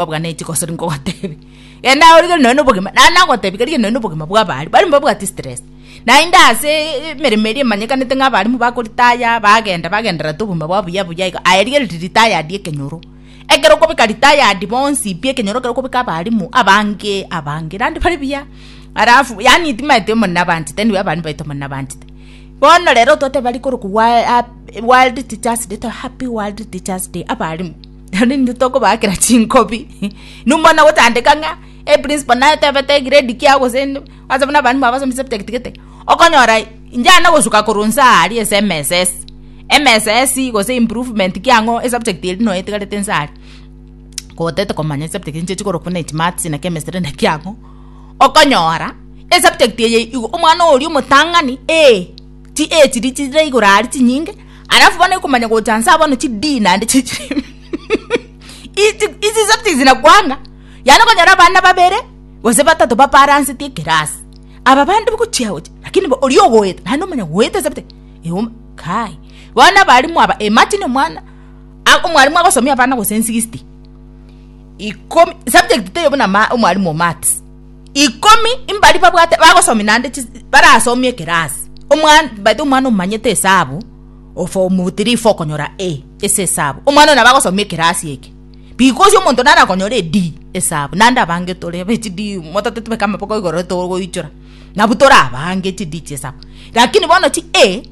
Babwa neti gosori ngogotebi. Genda orige noe nobogima. Na nagotebi kariga noe nobogima bwa abari. Bari mbabwati stress. Naende ase emeremo eria emanyekanete ng'a abarimu bakoritaya bagenda bagendererete obogima bwabo buya buya iga. Aye rigereria retired ekenyoro. Ekero okobeka retired bonsi pi ekenyoro ekero okobeka abarimu abange abange naende bari buya. Alafu yaani timaeti omonene abanchete nigo abarimu baito omonene abanchete. Bono rero totebe rikorokigwa world teachers day toba happy world teachers day abarimu. Naende intwe tokobaakera chinkobi. Numone gotandeka ng'a eprinciple naye tebete egrade kiago gose ende, ase buna abanyene mwabo basome chisubject gete, okonyora inchana gosuka korwa inse aa aria ase MSS, MSS gose improvement ki ang'o esubject eria nonya etigarete inse aria, kotete komanya chisubject echi nchiche korokwa buna echimaths na chemistry naki ang'o, okonyora esubject eye igo omwana oria omotang'ani eeh. Chi age chiri chire igoro ari chinyinge, alafu bono ekomanya gocha nsa bono chi D naende chi chi. Ichi ichi subjects zinakwanga. Yani konyora abana babere gose batato baparansetie ekerasi. Aba bande bogochia gocha lakini bo ori ogoeta naende omanya goeta subject. Eum kai. Bono abalimu aba imagine omwana a- omwalimu agosomia abana gose 60. Ikomi subject teiyo buna ma omwalimu o maths. ikomi mbari babwate bagosomi nande barasomi ekerasi omwana baito omwana omanyete esabu ofomu tiri fo okonyora e ase esabu omwana nabo agosomi ekerasi eke because omonto nare akonyora e D esabu nande abange tore be chi D motate tobeke amaboko igoro togoichora nabu torabange chi D chiesabu lakini bono chi A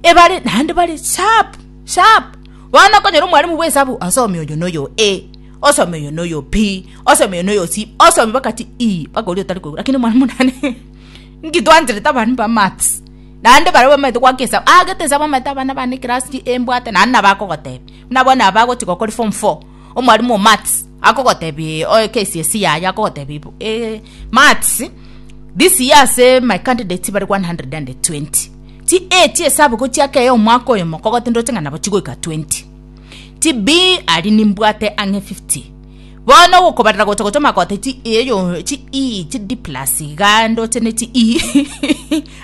ebare naende bare sharp sharp bono okonyora omwarimu bwesabu asomi oyo noyo A. Osome oyo noyo pi, osome oyo noyo si, osome bakati i, bakori otari koigwa. Lakini mwana munane nki twancherete abana ba maths. Naende baria bamanyete gwaka esabu, agete esabu amanyete abana bane class ki embwate naende nabo akogotebia. Buna bono aba agochi gokori form four, omwarimu o maths akogotebia oe KCSE yaye akogotebia bo eh maths this year ase my candidates bare one hundred and twenty, chi eight esabu gochiaka eye omwaka oyomo kogotindorete ng'a nabo chigoika twenty. Chibii aria nimbwate ang'e 50. Bono ogokobarera gocha gocha magote chi eyo chi i chi D plus iga ndoche ne chi i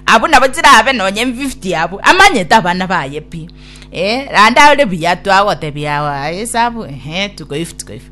abwo nabo chirabe nonye 50 abwo amanyete abana baye pi eh naende are buya twagotebia wa esabu ehe tukoifu tukoifu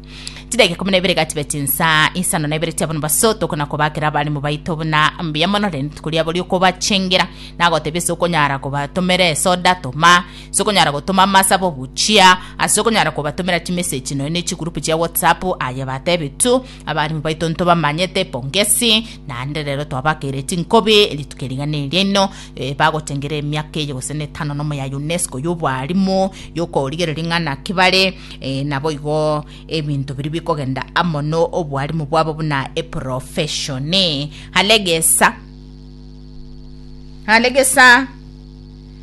chidakika ikomi na ibere gachibe chinsa isano na ibere chia bono baso tokona kobakera abarimu baito buna mbuya mono rende rituko riabo riokobachengera nagotebia ase okonyara kobatomera esoda toma Ase okonyara gotoma amasabe ogochia ase okonyara kobatomera chimeseji nonya ne chigurupu chia WhatsApp, aye batebetwe abarimu baito ntobamanyete epongesi, naende rero twabakeire chinkobi rituko erigana eria inwe eh, bagochengira emiaka eye gose ne etano nomo ya UNESCO y'obwarimu y'okorigereria ng'a naki bare, eh, naboigo ebinto biria bikogenda amo no obwarimu bwabo buna eprofeshoni. Alegesa. Alegesa.